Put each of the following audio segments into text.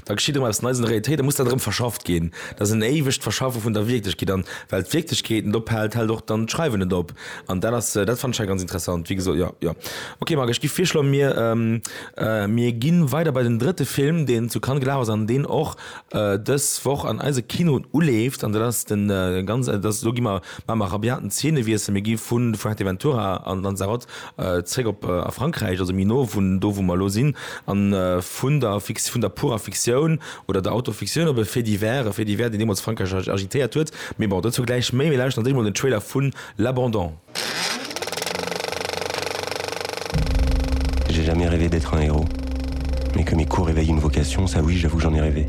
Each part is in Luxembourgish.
Da geschitt erëm eppes Neies an der Realitéit a muss dann erëm verschafft ginn. Dat ass en éiwegt Verschaffe vun der Wierklechkeet. An well d'Wierklechkeet net ophält, hält och dann d'Schreiwen net op. An dat ass, dat fannen ech hei ganz interessant, wéi gesot, jo, jo. Ok, Marc, ech gi virschloen, mir, mir gi weider bei den drëtte Film, deen zu Cannes gelaf ass an deen och dës Woch an eise Kinoen uleeft. An dat ass den ganz, dat ass, do gi mer, maache mer e rabiaten Zeenewiessel, mir gi vu Fuerteventura an Lanzarote Zréck op a Frankräich, also méi no vun do wou mer elo sinn, a vun der Fic-, vun der purer Fiktioun oder der Autofiktioun op e Fait divers, e Fait divers deen deemools Frankräich ag-agitéiert huet. Mee bon, dozou gläich méi. Mir lauschteren ons éischt mol den Trailer vun L'Abandon. J'ai jamais rêvé d'être un héros, mais que mes cours éveillent une vocation, ça oui, j'avoue que j'en ai rêvé.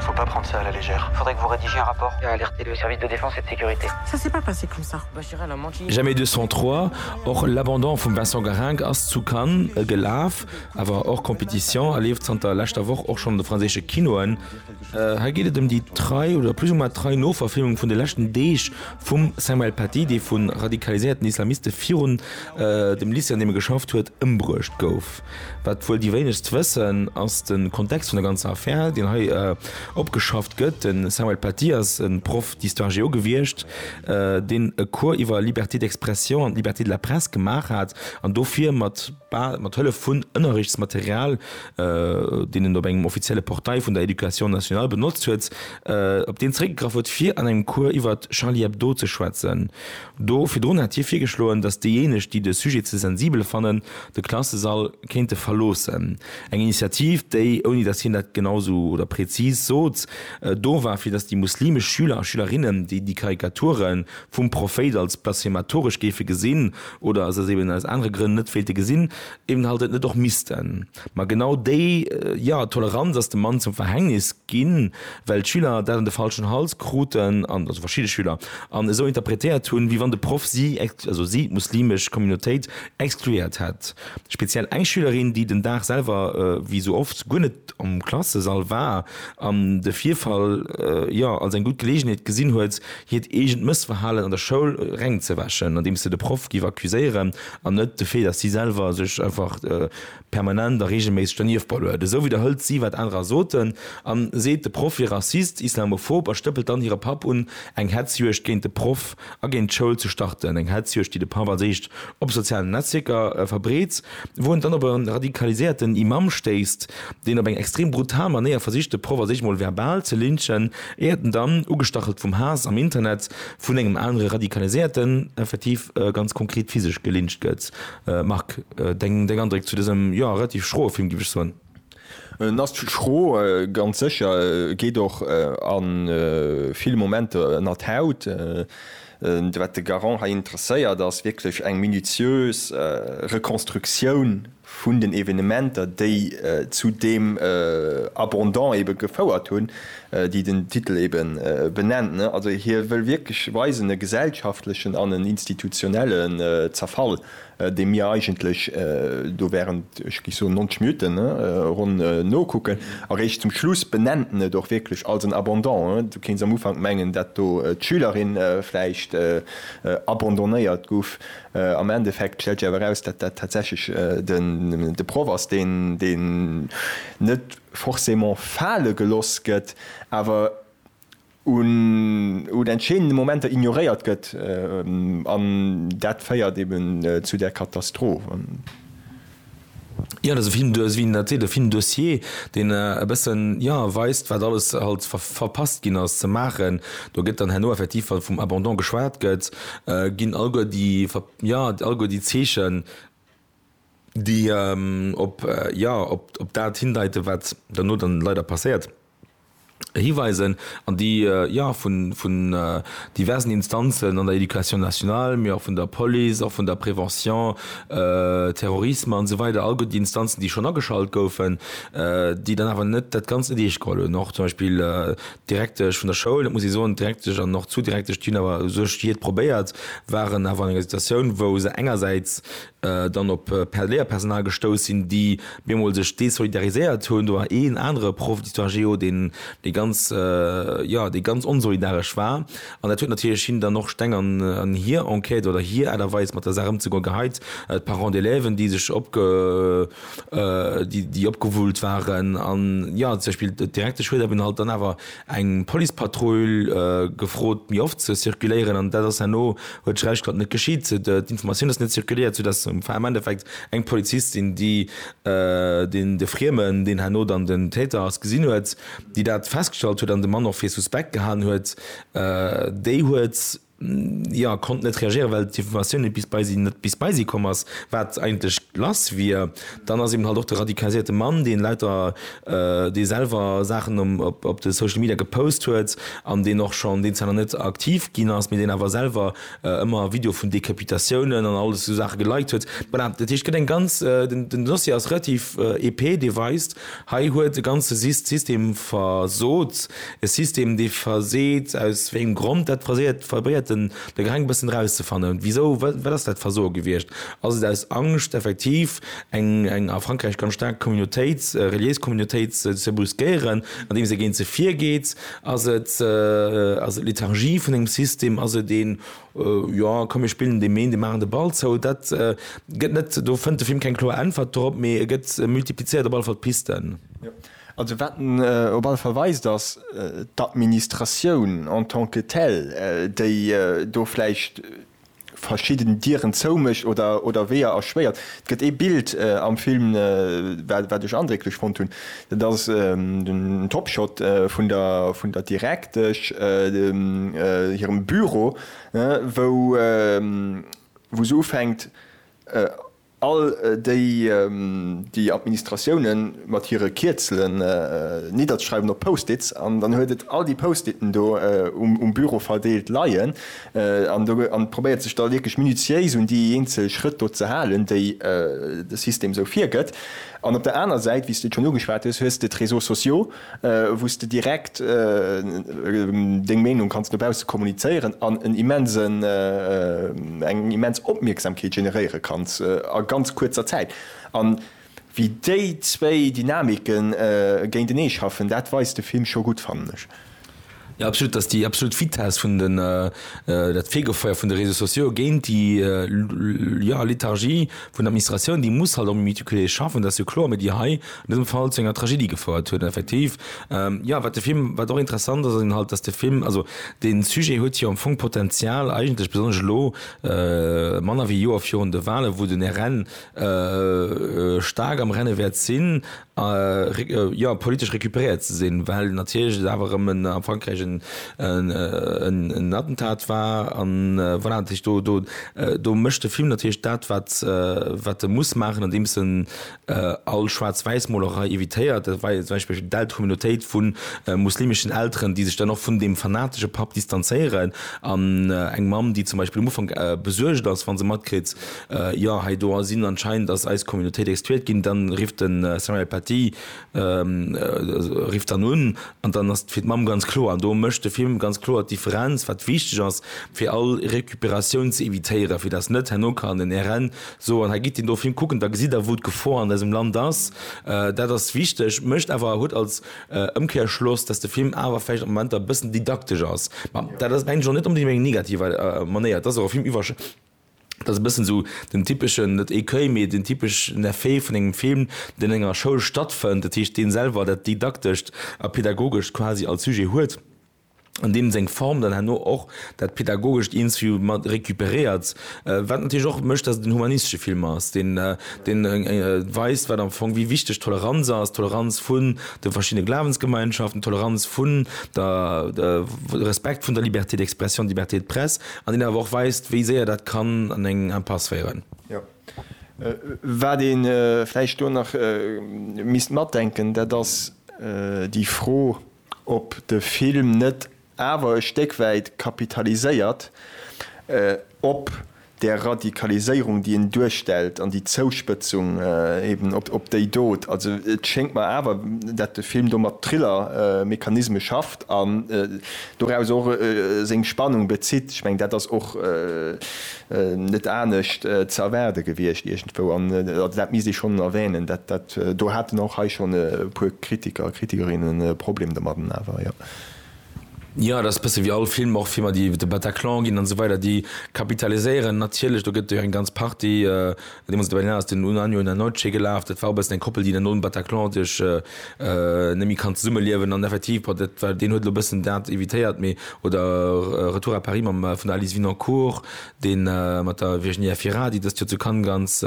Faut pas prendre ça à la légère. Faudrait que vous rédigiez un rapport à alerter le service de défense et de sécurité. Ça s'est pas passé comme ça. Jamais 203, och l'abandon vum Vincent Garrinck ass zu Cannes gelaf, awer hors compétition a leeft zanter leschter Woch och schonn an de franséische Kinoen. Hei geet et ëm déi trei oder plus ou moins trei Noverfilmung vun de leschten Deeg vum Samuel Paty, dee vu radikaliséierten Islamiste virun dem Lycée, an deem e geschafft huet, ëmbruecht gouf. Wat wuel déi wéinegst wëssen, ass de Kontext vun der ganzer Affär, deen hei opgeschafft gëtt. De Samuel Paty ass e Proff d'histoire-géo gewiescht, deen e Cours iwwer Liberté d'expression an Liberté de la presse gemaach hat an dofir mat mat Hëllef vun Ënnerrechtsmaterial, deen en op engem offizielle Portail vun der Education nationale benotzt huet, op deen zeréckgegraff huet, fir an engem Cours iwwer Charlie Hebdo ze schwätzen. Do virdrun hat hie virgeschloen, datt déijéineg, déi de Sujet ze sensibel fannen, de Klassesall kéinte verloossen. Eng Initiativ, déi, ouni datt hien dat genau esou oder prezis sot, do war, fir datt déi muslimesch Schüler a Schülerinnen, déi déi Karikature vum Prophéit als blasphematoresch géife gesinn oder se aus eben aus anere Grënn net wéilte gesinn, eben halt et net och missten. Ma genau déi, jo, Toleranz ass dem Mann zum Verhängnis ginn, well d'Schüler dat an de falschen Hals kruten, also verschidde Schüler, an esou interpretéiert hunn, wéi wann de Proff si, also si, d'muslimesch Communautéit exkluéiert hätt. Speziell eng Schülerin, déi den Dag selwer, wéi esou oft, guer net am Klassesall war an de Virfall, jo, als eng gutt Geleegenheet gesinn huet, hiert eegent Mëssverhalen an der Schoul rengzewäschen, andeems se de Proff géif accuséieren an net de Fait, dass si selwer sech einfach, permanent a reegelméisseg dernieft ballert, esou widderhëlt si wat anerer soten a seet de Proff wier Rassist, Islamophob a stëppelt dann hire Papp un eng Hetzjuegd géint de Proff a géint d'Schoul ze starten. Eng Hetzjuegd déi de Papp als éischt op sozialen Netzwierker verbreet, wou en dann op e radikaliséierten Imam stéisst, deen op eng extrem brutal Manéier versicht de Proff als éischt mol verbal ze lynchen, éiert en dann, ugestachelt vum Haass am Internet, vun engem anere radikaliséierten, effektiv ganz konkret physesch gelyncht gëtt. Marc, deng Andréck zu dësem, jo, relativ schroe Film, géif ech soen? En ass schro, ganz sécher, geet och a ville Momenter ënner d'Haut. Wat de Garand hei interesséiert, ass wierklech eng minutiös Rekonstruktioun vun den Evenementer, déi zu deem Abandon ebe gefouert hunn, déi den Titel ebe benennt, also hie wëll wierklech weisen, e gesellschaftlechen an en institutionelle Zerfall, deem mir eigentlech do während, ech géif soen, 90 Minutten ronn nokucken. Eréischt zum Schluss benennt en et och wierklech als en Abandon. Du kéints am Ufank mengen, dat do d'Schülerin vläicht abandonnéiert guff, am Endeffekt stellt sech awer eraus, dat dat tatsächlech de Proff ass, deen net. forcément fale geloss gëtt, awer un un entscheedende Momenter ignoréiert gëtt, an dat féiert eben zu där Katastroph. Jo, dat ass e Film, du wéi en dat seet, e Film dossier, deen e bëssen, jo, weist, wat alles halt ver verpasst ginn ass ze maachen. Do gëtt dann herno effektiv, wa vum Abandon geschwat gëtt, ginn alleguer déi ver, jo, alleguer déi Zeechen, déi op, jo, op dat hindeiten, wat derno dann leider passéiert, hiweisen an déi, jo, vun diversen Instanzen an der Éducation nationale, mee och vun der Police, och vun der Prévention, Terrorisme an esou weider, all déi Instanzen, déi schonn ageschalt goufen, déi dann awer net dat Ganzt net eescht geholl hunn, och zum Beispill D'Direktesch vun der Schoul, dat muss ee soen, d'Direktesch an och d'Zou-Direktesch, déi hunn awer u sech jiët probéiert, waren awer an enger Situatioun, wou se engersäits dann op Léierpersonal gestouss sinn, déi bemol sech désolidariséiert hunn. Do war een anere Proff d'Histoire géo, deen, dee ganz, jo, dee ganz onsolidaresch war. An dat huet natierlech him dann och Steng an hir Enquête oder hir Aart a Weis, mat der Saach ëmzegoen, geheit. D'Parents d'élèven, déi sech opge, déi, déi opgewullt waren. An jo, zum Beispill de direkte Schued, ech hunn halt dann awer eng Policepatrull gefrot, méi oft ze zirkuléieren. An dat ass herno, huet Schräg gesot, net geschitt. D'Informatioun ass net zirkuléiert, soudass am Endeffekt eng Polizistin, déi deen, de Friemen, deen herno dann den Täter ass, gesinn huet, déi dat festgestallt huet an de Mann och fir suspekt gehalen huet, déi huet, jo konnt net reagéieren, well d'Informatioun net bis bei si net bis bei si komm ass, wat eigentlech lass wier. Dann ass eben halt och de radikaliséierte Mann, dee lauter, dee selwer Saachen um op de Social Media gepost huet an deen och schonn, deen zwar nach net aktiv ginn ass, mee deen awer selwer ëmmer Video vun Decapitatiounen an alles esou Saache geliked huet. Voilà, dat heescht, et gëtt eng ganz, den Dossier ass relativ épais, dee weist, Hei huet e ganze System versot, e System, dee verseet. Aus wéi engem Grond dat verseet, probéiert den De Greng e bëssen erauszefannen. Wisou, wat ass dat Versoe gewiescht? Ass et aus Angscht, effektiv eng a Frankräich ganz staark Communautéit, reliéis Communautéit ze brüskéieren, andeems ee géint se virgeet? Ass et Lethargie vun engem System? Ass et een Jo, komm mir spillen dee Méindeg, maachen de Ball zou. Dat gëtt net, do fënnt de Film keng kloer Äntwert drop, mee e gëtt, e multiplizéiert op alle Fall d'Pisten. Jo, also wat en op alle Fall weist, ass d'Administratioun en tant que telle, déi do vläicht verschidden Dieren zoumécht oder Weeër erschwéiert. Et gëtt ee Bild am Film, wat ech andrécklech fonnt hunn, Dat ass den Topshot vun der Direktesch hirem Büro, wou se ufänkt all déi Administratiounen mat hire Kierzelen nidderzeschreiwen op Post-its. An dann huet et all déi Post-iten do um Büro verdeelt leien an probéiert sech da wierklech minutiéis un déi eenzel Schrëtt do ze halen, déi de System esou virgëtt. An op der aner Säit, wéi s de et schonn ugeschwat hues, hues de d'Réseaux sociaux, wou s de direkt deng Meenung kanns no bausse kommunizéieren an en immensen, eng immens Opmierksamkeet generéiere kanns a ganz kuerzer Zäit. A wéi déi zwéi Dynamiken géintenee schaffen, dat weist de Film scho gutt, fannen ech. Jo, absolut, dass déi absolut Vitess vun den, dat Fegefeuer vun de Réseaux sociaux géint déi, jo, Lethargie vun der Administratioun, déi muss halt och méi méticulé schaffen, dat ass jo kloer, mee déi hei an dësem Fall zu enger Tragedie gefouert huet. An effektiv, jo, wat de Film, wat och interessant ass, ass halt, dass de Film, also dee Sujet huet jo am Fong Potenzial, eigentlech besonnesch elo, manner wéi e Joer virun de Wahlen, wou den RN staark am Renne wäert sinn, jo politesch recuperéiert ze sinn, well natierlech et awer erëm a Frankräich en Attentat war an voilà. Dat heescht, do do mécht de Film natierlech dat, wat wat e muss maachen, andeems en all Schwaarz-Wäiss-Molerei evitéiert. Dat war jo zum Beispill eng delt Communautéit vu muslimeschen Elteren, déi sech dann och vun deem fanatesche Papp distanzéieren an eng Mamm, déi zum Beispill um Ufank besuergt ass, wa se matkritt, Jo, hei do sinn anscheinend ass eis Communautéit exkluiert ginn. Dann rifft de Samuel Paty rifft dann un an dann ass fir d'Mamm ganz kloer. An do mécht de Film ganz kloer d'Differenz, wat wichteg ass, fir all Recuperatioun ze evitéieren, fir dass net herno kann en RN soen, hei gitt deen do Film kucken, da gesitt der, wou d'Gefor an eisem Land ass. Dat ass wichteg, mécht awer, huet als Ëmkehrschloss, dass de Film awer vläicht a Momenter e bëssen didaktesch ass. Mä dat ass mengen ech och net onbedéngt op eng negativ Manéier. Et ass och e Film iwwer. Dat ass e bëssen esou den typeschen, net Écueil, mee den typeschen Effet vun engem Film, deen an enger Schoul stattfënnt, dat heescht, dee selwer dat Didaktescht a Pädagogescht quasi als Sujet huet an deem seng Form dann herno och dat Pädagogescht iergendwéi mat récupéréiert. Wat natierlech och mécht, dass et en humanistesche Film ass, deen weist, wat am Fong, wéi wichteg Toleranz ass, d'Toleranz vun de verschiddene Glawensgemeinschaften, d'Toleranz vun der, de Respekt vun der Liberté d'expression, d'Liberté de presse. An deen awer och weist, wéi séier dat kann an eng Impasse féieren. Jo. Wat ee vläicht do nach misst matdenken, dat ass déi Fro, ob de Film net awer e Stéck wäit kapitaliséiert op där Radikaliséierung, déi en duerstellt, an déi Zouspëtzung eben op déi Dot. Also et schéngt mer awer, dat de Film do mat Thriller-Mechanisme schafft an. Doraus och seng Spannung bezitt. Ech mengen, dat ass och net anescht ze erwaarde gewiescht iergendwou. An also dat misst ee schonn erwänen, dat do haten och hei schonn e puer Kritiker a Kritikerinnen e Problem domadden awer, jo. Jo, et ass e bësse wéi all Film, och Filmer, déi iwwer de Bataclan ginn an esou weider, déi kapitaliséieren natierlech, do gëtt et jo eng ganz Partie, Deemools op der Berlinale ass den Un año y una noche gelaf. Dat war e bëssen eng Koppel, déi dann nom Bataclan sech net méi kann zesummeliewen. An effektiv, bon, dat war, deen huet elo e bëssen dat evitéiert, mee oder Retour à Paris mam, vun der Alice Winancourt, dee mat der Virginie Efira, déi dëst Joer zu Cannes ganz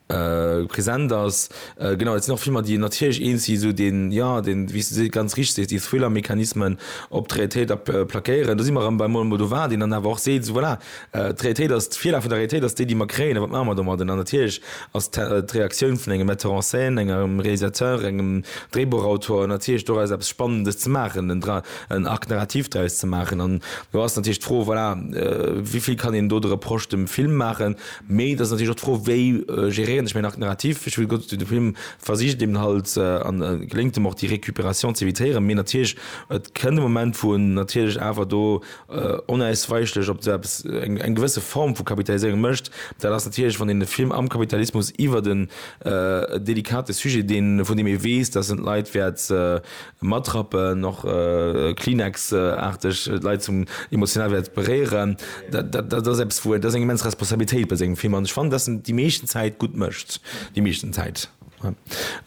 present ass. Genau, dat sinn och Filmer, déi natierlech eens si sou deen, jo, deen, wéi s de ganz richteg sees, déi Thriller-Mechanismen op d'Realitéit plaquéieren. Do si mer erëm beim Almodovar, deen dann awer och seet, voilà, D'Realitéit ass, d'Virlag vun der Realitéit ass déi, déi mer kréien, a wat maache mer domadden? An natierlech ass d'Reaktioun vun engem Metteur en scène, engem Realisateur, engem Dréibuchautor natierlech doraus eppes Spannendes ze maachen, en Arc narratif draus ze maachen. An do ass natierlech d'Fro, voilà, wéi vill kann een do de Reproche dem Film maachen? Mee et ass natierlech och d'Fro, wéi geréieren ech mäin Arc narratif? Ech wëll gutt, de Film versicht eben halt, an et geléngt em och, déi Récupération z'evitéieren, mee natierlech et kënnt e Moment, wou en natierlech awer do onausweichlech op esou eppes eng gewësse Form vu Kapitaliséierung mécht, dat ass natierlech, wann een de Film am Kapitalismus iwwert en delikate Sujet, deen, vun deem ee weess, datt en d'Leit wäert matrappen, och Kleenex-aarteg d'Leit zum emotional wäert beréieren, dat ass eppes, wou, dat ass eng immens Responsabilitéit bei sengem Film. An ech fannen, datt en déi meeschten Zäit gutt mécht, déi meeschten Zäit.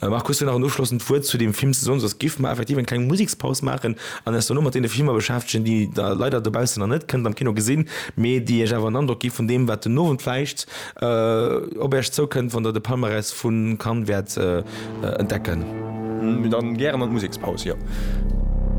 Marc, hues du nach en ofschlossend Wuert zu deem Film ze soen? Soss giff mer effektiv eng kleng Musekspaus maachen an eis dono mat deene Filmer beschäftegen, déi Der leider dobaussen nach net kënnt am Kino gesinn, mee déi Iech awer en Androck gi vun deem, wat den Owend vläicht op Iech zoukënnt, wann Der de Palmarès vu Cannes wäert entdecken. Dann gären an d'Musekspaus, jo.